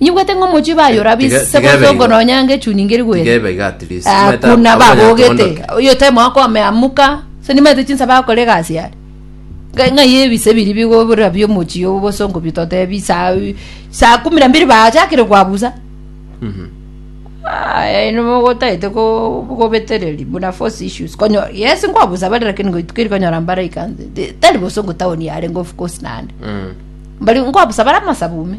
Nyigwete ng'a omochie baye ora Tiga- bise tiga ebe botongo igo. nonya ng'a echuni ngeri gwere. Tiga ebe iga at least. Ah, Maete kuna abanya babogete tondoke. oyo time wako ameamuka so nimanyete chinsa bakora egasi are Nga- ng'ai ebise biri bigobora bia omochie oo bosongo bitotebi saa saa kumi na mbiri bachakire kwabusa Mhm. aya ino mogotaete ko- kobetereri buna force issues konyo yes nkwabusa bare lakini ngoituka eri konyora mbara ikanse Ti- tari bosongo town yarenge of course nande Mm. mbari nkwabusa bara amasabume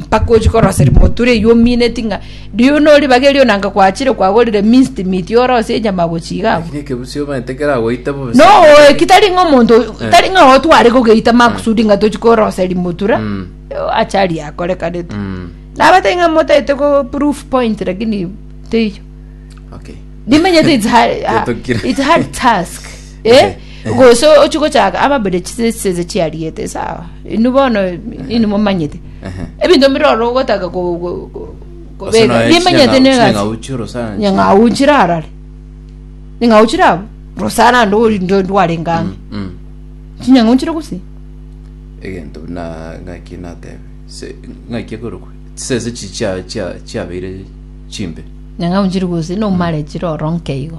mpaka ochie korosa rimotu reyio omineti ng'a riu noribageri ona anga gwachire kwagorire minced meat orose enyama gochia iga abwo. Lakini ekebusio omanyete keragoita bobe. No oeki tari ng'a omonto tari ng'a otware kogeita makusudi ng'a tochi korosa rimotura Mm. achari akorekanete Mm. nabatari ng'a motete ko proof point lakini teiyo Okay. nimenyete it's hard, Getokire. it's hard task Eh, gose ochie gochaka ababere chisese chiariete sawa inu bono inu momanyete ebinto mbire oro ogotaka ko- ko- ko- kobeka nimanyete negasi nyang'au chirarare ning'au chirabo rosara ndo ori ndo ndwarengame chinyang'au chire gusi egento na ngaki natebe se ngaki ekorokwe sese chi chia chia chiabeire chimbe nyang'au chire gusi nomare chire oronke igo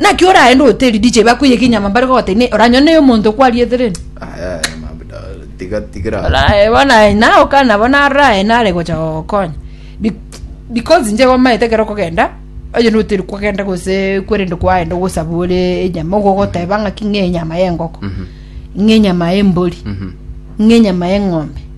naki oraende hoteli dj bakoiyeka enyama mbare kogoteba ne oranyore ne omonto okwariete rende Aya, aya, mabuda, tiga tigira Orae bona ina okana bona arae nare gocha gokonya Be- because nje gomaete kero kogenda onye na hoteli kwagenda gose kwerende kwaenda gosaba ore enyama igo ogoteba ng'aki ng'e enyama ya engoko ng'e enyama ya embori ng'e enyama ya eng'ombe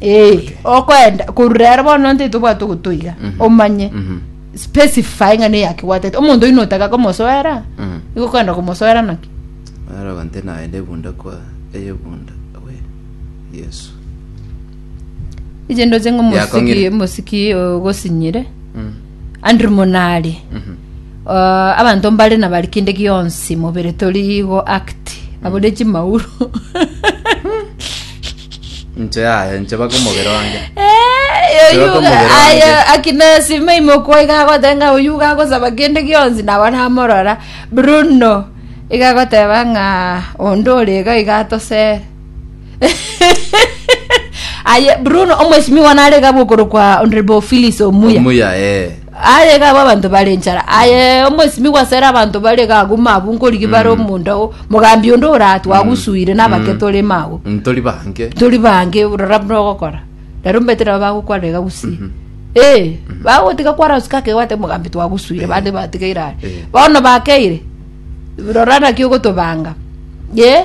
Eh, okwenda koru rero bono ntaito obwate ogotoiga omanye specify ng'a neyaki gwatete omonto oyio notaka komosoera Mm. igo kwenda komosoera naki Araga nte naende ebunda kwa eyebunda we Yesu. iche ndoche ng'a omosiki Yakong'ire. omosiki ogosinyire Mm. Andrew Munari uh, abanto mbare na bari kinde gionsi mobere tori igo act abore chimauru inche yaye inche baka omobere wange Eh, yo- Sibaka yo- omobere aye, wange. akina sima imokwa igagotenga uyu gagosaba kinde gionsi nabo namorora bruno igagoteba ng'a onde orega igatosere aye bruno omweshimiwa nare gabo okoro kwa honorable phyllis omuya omuya eh aye gabo abanto bare nchara aye omweshimiwa sere abanto bare gaguma abu nkorigi bare omonda o mogambi onde ora twagusuire nabake tore mago ntori bange tori bange rora buna ogokora rero mbete nabo bagokwarega gusii ee bagotiga kwarasuka kegwate mogambi twagusuire bande batigaire are Eh. bono bakeire rora naki ogotobanga ye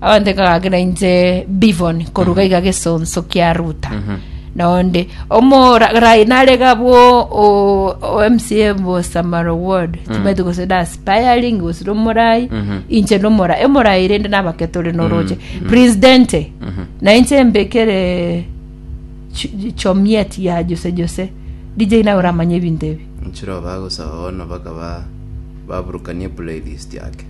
Abanto ekagakera inche Bivon koruga iga gesonso kia Ruta na onde omorai nare gabwo o- o MCA Bosamaro Ward timanyete gose na aspiring gose na omorai inche na omorai emorai rende nabake tore noroche Prince Dente na inche mbekere ch- chomiet ya Jose Jose DJ nawe oramanye ebinto ebi Nchiro bagosaba bono bakaba baburukanie playlist yake.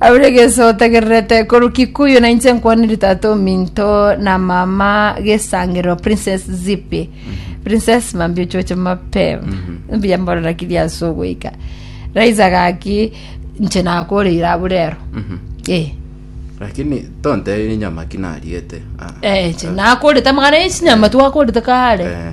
Aure geso otegererete korwa Kikuyu na inche nkwanire tata ominto na mama gesangero Princess Zipi. Princess mambi ochoche mapema. Mbuya mborera kiri ase ogoika. Raiza gaki inche nakoreire aburero. Eh. lakini tonteire nyama ki nariete Ah, Eh, inche nakorete amagana echinyama twakorete kare. Eh.